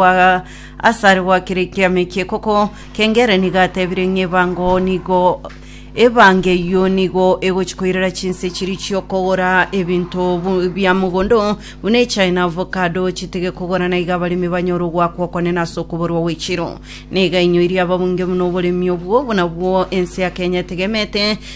gwa asare gwakireke ameke koko kengere nigo atebire ng'a ebango nigo ebange eyio nigo egochi koirera chinse chiri chiokogora ebinto bu- bia mogondo buna echai na avocado chitige kogora na iga abaremi banyore ogwakwa okonene ase okoborwa gw'echiro niga inyoirie ababunge buna oboremi obwo buna bwo ense ya kenya etegemete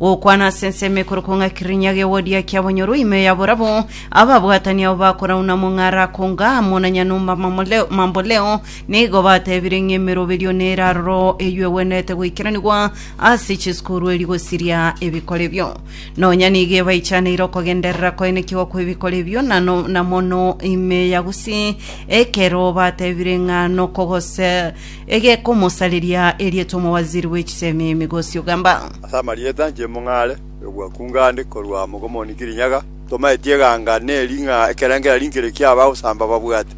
Gokwana ase ensemo ekorokwa ng'a kirinya gegodia kia bonyoru ime ya borabu, ababwatani abo bakorauna mong'ara akonga amo na nyanumba mamole- mamboleo, nigo batebire ng'a emeroberio neraroro eyio egwenerete goikeranigwa ase chisukuru eri gosiria ebikore ebio. Nonya nigo ebaichaneire okogenderera koenekigwa kw'ebikore ebio na no- na mono ime ya Gusii, ekero batebire ng'a nokogose egekomosareria erieta omowaziri bwe chisemi Migosi Ogamba. Ase amarieta inche mong'are ogwakunga ande korwa mogomoni Kirinyaga, tomaeti eganga ne ring'a ekero engira rinkere kia abagosamba babwate,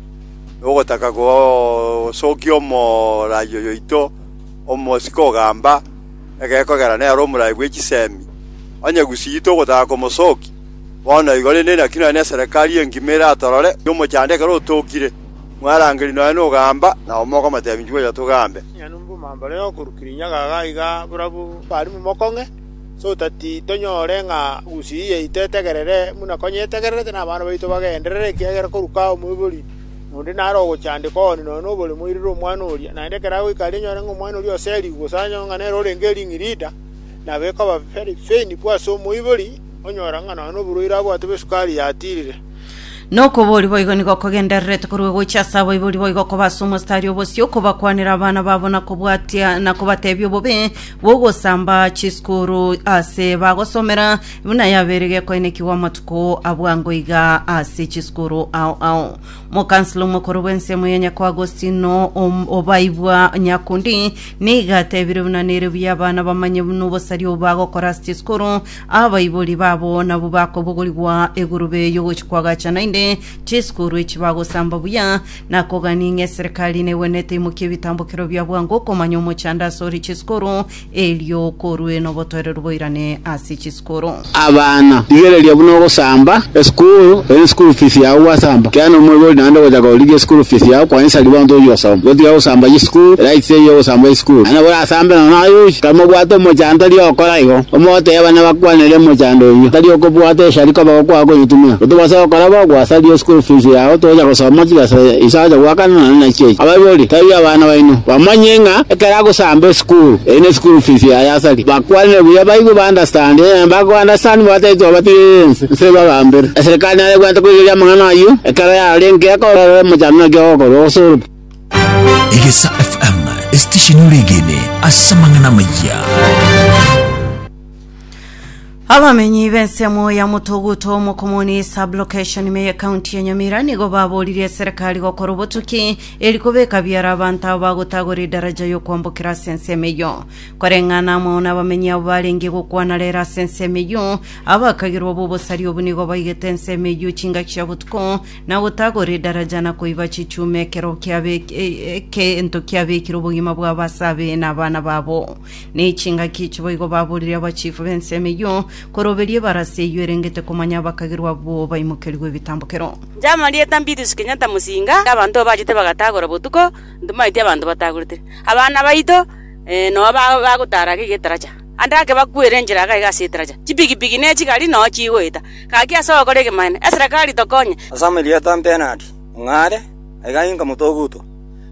na ogotaka gosokia omorai oyoito omosike ogamba, egekogera nere omorai bwe chisemi. Onye gusii togotaka komosokia, bono igo rende naki nonya neserekari engima eratorore, omochando ekero otokire. mwarangeri nonya nogamba, nabo mokomotebia, Inchuo oyo togambe. Nonya nomomambare okorukire inyaga iga iga borabu bwarimu mokong'e, ase otati tonyore ng'a gusii yaito etegerere buna konyetegererete, na abana baito bagenderere, ekiagera koruka omoibori onde nare ogochandeka one nonya nobore moirire omwana oria. Naende ekero agoika aria enyore ng'a omwana oria oserigwe, gose anyore ng'a nere orenge ering'i rida, nabo ekoba very painful ase omoibori, onyora ng'a nonya noborwaire abwate bw'esukari yatirire. Na okobori boigo nigo kogendererete korwa gocha ase abaibori boigo koba ase omostari obosio, kobakwanera abana babo na kobwatia na kobatebia obobe bw'ogosamba chisukuru ase bagosomera, buna yabeire gekoenekigwa amatuko abwango iga ase chisukuru ao ao. Mokansla omokoro bw'ensemo ya Nyako Agostino Om- Obaibwa Nyakundi nigo atebire buna nere buya abana bamanye buna obosaria obo bagokora ase chisukuru Abaibori babo nabwo bakobogorigwa egurube y'ogochia kwagacha, naende chisukuru echi bagosamba buya, na kogania ng'a eserekari negwenerete imokie ebitambokero bia bwango okomanya omochando ase ore chisukuru, erio korwe nobotoereru boirane ase chisukuru. Abana, rigereria buna ogosamba esukuru, ere school fees yao gwasamba. Kiana omoibori naende ogochaka gorigia esukuru fees yao kwainsa ribaga ntochia gosoma. Gotiga gosamba y'esukuru, eraiti teiyo y'ogosamba y'esukuru. Naende nabo orasambe nonya aye ochi, tari mobwate omochando riokora igo. Omoteba nabakwanere mochando oyio tari okobwata eshari koba gokwaa konyetumia. Gotobasa gokora bo gwasaria eschool fees yao tocha gosoma chigesa iso acha goakana nonya nachi echi. Abaibori tari abana baino bamanye ng'a ekero agosamba eschool eyi ne school fees yaye asaria. Bakwanere buya baigwe ba understand onye bago understand batagete obatigereria ense nse ebabambere. Eserekari nare bwate koigereria amang'ana ayio ekero yarorire nki ekororere mochando naki ogokorwa gose orokio. Egesa FM esitesheni oregene ase amang'ana amayia. Abamenyi b'ensemo ya Mutoguto Mokomoni sublocation ime ya kaunti ya Nyamira nigo baboririe serikali gokora obotuki eri kobeka biara abanto abo bagotagora edaraja y'okwambokera ase ensemo eyo koreng'ana amo n'abamenyi abo barenge gokwana rero ase ensemo eyo abakagirwa b'obosari obu nigo baigete ensemo eyo chingaki chia botuko na gotagora edaraja na koiba chichuma ekero kiabe- e- ekento kiabekire obogima bwabo ase abe na abana babo. Nechingaki echi boigo baborire abachifu b'ensemo eyio, koroberia ebarasi eyio erengete komanya abakagerwa abwo baimokerigwe ebitambokero. Njama rieta Mbidius Kenyatta Musinga y'abanto abachete bagatagora botuko ntomaeti abanto batagoretire abana baito eh, noa ba- bagotara ake getaraja. Ande ake bakwere enchera akai gase etaraja, chipigipigi ne chigari noo chigoeta. Gaki ase ogokora egemanene, eserekari tokonye. Ase amarieta 'mpenadi ng'a are, aiga inka motogutwa.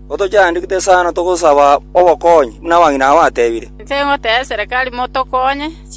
Gotochiandikete sana togosaba obokonyi, buna abang'ina abateebire. Inche ngotebia eserekari motokonye.